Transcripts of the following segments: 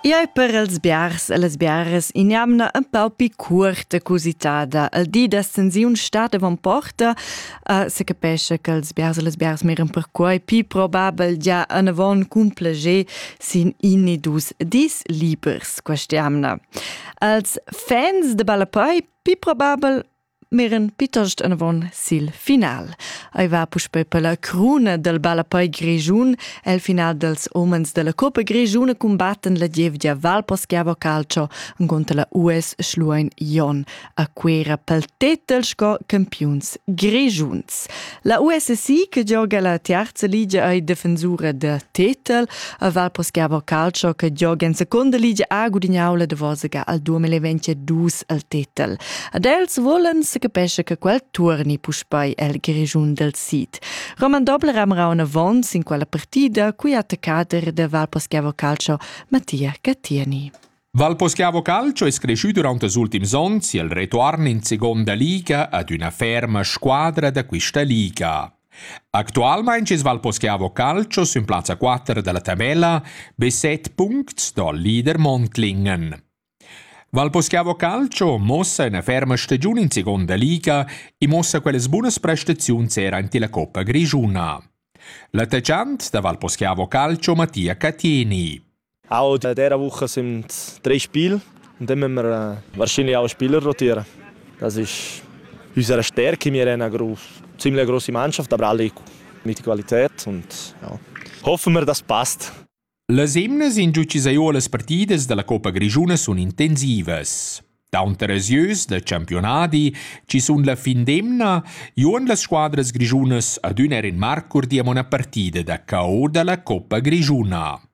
Iai per els biars e las biaras in jamna un pau pi cuorta cusitada. Il di da stensiun stat avon porta, uh, se capesce che els biars e les biars miran perquai pi probabel gia anavon cumpleger sin in e dus dis libers questa jamna. Els fans de ballapoi pi probabel Miren pitost anavon sil final. Ei va puspei per la cruna del ballapei grischun. El final dels homens della Coppa Grischuna combatten la gievgia Valposchiavo Calcio contra la US Schluein Jon a Cuera pel tetel sco campiuns grischuns. La USSI che gioga la terza liga ei defensura da tetel, a Val Poschiavo Calcio che gioga in seconda liga ha gudignau la Davosaga al 2022 al tetel. Ad els volen se capesce che quel turni puspei el grigiun del Sid. Roman Dobler amra un avons in quella partida cui attaccader de Val Poschiavo Calcio Mattia Cattiani. Valposchiavo Calcio es creschü durant ils ultims ons i'l retuorn in seguonda liga ad üna ferma squadra da quista liga. Actualmaing es Valposchiavo Calcio sün plazza 4 dalla tabella be 7 puncts dal leader Mondlingen. Valposchiavo Calcio mossa üna ferma stagiun in seconda liga e mossa quellas bunas prestaziuns era ante la Coppa Grigiuna. L'attaccant da Valposchiavo Calcio Mattia Catini. Audi hat diese Woche drei Spiele und dann müssen wir wahrscheinlich auch Spieler rotieren. Das ist unsere Stärke. Wir haben eine ziemlich große Mannschaft, aber alle mit Qualität und ja. hoffen wir, das passt. Les hymnes in giugiziuolas partidas dalla Coppa Grischuna sun intensivas. Taunter als ieus da campionadi ci sun la fin d'emna juon las squadras grischunas adüna er in marcur di a una partida da KO dalla Coppa Grischuna.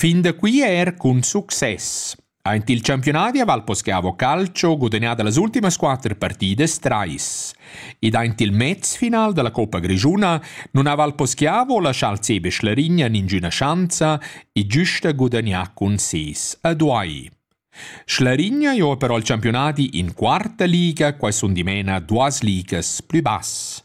Fin da qui er cun success. Aint il campiunadi a Valposcavo Calcio gudagnà da las ultimas quatter partidas trais. Ed aint il mezfinal da la Coppa Grischuna nun ha Valposcavo lascià al CB Schlarigna ningüna schanza e giusta gudagnà cun ses a Duai. Schlarigna jo però il campiunadi in quarta liga, quai sun dimena duas ligas plü bass.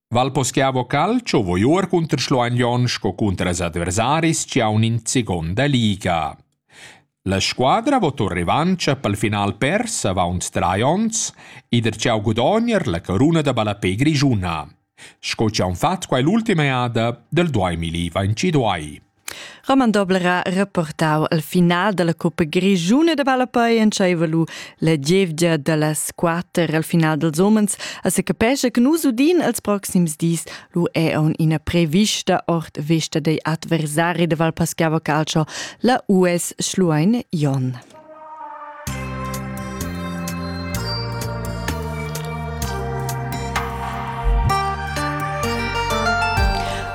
Val poschiavo calcio vo iuor cunter Schluagnon sco cunter els adversaris chi haun in seconda liga. La squadra vo tour revancha pel final pers avaunt trai ons e der cha gudogner la caruna da ballapè grischuna, sco chi haun fat quai l'ultima eada del 2022. Roman Dobler ha reportau al final dalla Coppa Grischuna da ballapei entscheiva lu la gievgia dallas quater al final dels homens a se capescha che nus udin als proxims dis lu è aun ina prevista ord vesta dei adversari da Val Paschiava Calcio la US Schluein Jon.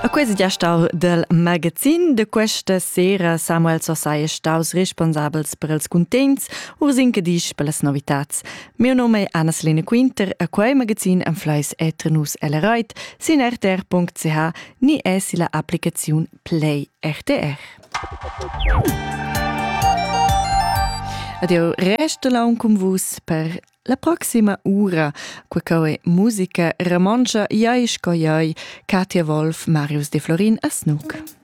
A quest gestar del magazin de questa sera Samuel Sossai è staus responsabels per els cuntents ursin che disch per las novitats. Mio nome è Anna-Selina Quinter, a quei magazin am fleis etre nus el reit sin rtr.ch ni es illa applicaziun Play RTR. Ed eu resto laun cun vus per la proxima ura, qua co è musica romontscha Iai sco Iai, Katja Wolf, Marius De Florin a Snook.